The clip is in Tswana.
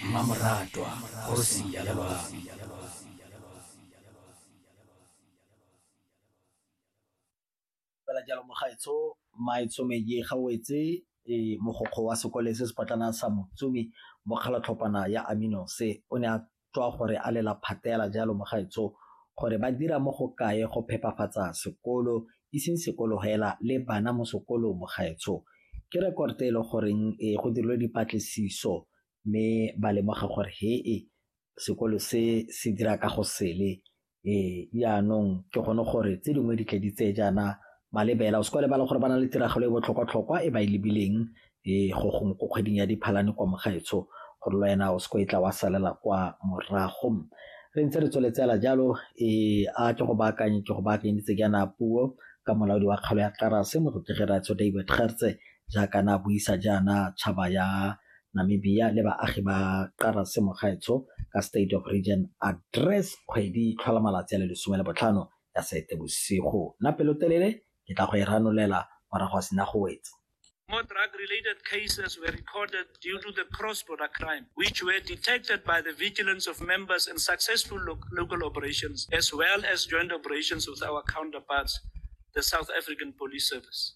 mmamoratwa kgosi ya lelwang fela jalo mogaetsho maetsome ye ga o etse eh, mogokgo wa sekole se sepotlana sa motsumi mokgalatlhopana ya amino se o ne a tswa gore a lela phatela jalo mo gaetsho gore ba dira mo go kae go phepafatsa sekolo e seng sekolo hela le bana mo sekolo mo gaetsho ke rekorte e le goreng e go dirilwe dipatlisiso mme ba lemoga gore he e sekolo se se dira ka go sele Ee, jaanong ke gone gore tse dingwe di tle di tseye jaana malebela o se kwa lebala gore ba na le tiragalo e botlhokwa-tlhokwa e ba e lebileng e go gongwe ko kgweding ya diphalane kwa mogaetsho gore le wena o se ko e tla wa salela kwa morago re ntse re tsweletsela jalo e a ke go baakanye ke go baakanyeditse jaana puo ka molaodi wa kgalo ya tlarase motlotlege ratsho david gertse jaaka na buisa jaana tšhaba ya Namibia le baagi ba Qarase Mogaetsho ka State of Region Address kgwedi tlhola malatsi a le lesome le botlhano ya Seetebosigo. Nna pelotelele ke tla go e ranolela morago a sena go wetsa. More drug-related cases were recorded due to the cross-border crime, which were detected by the vigilance of members and successful lo local operations, as well as joint operations with our counterparts, the South African Police Service.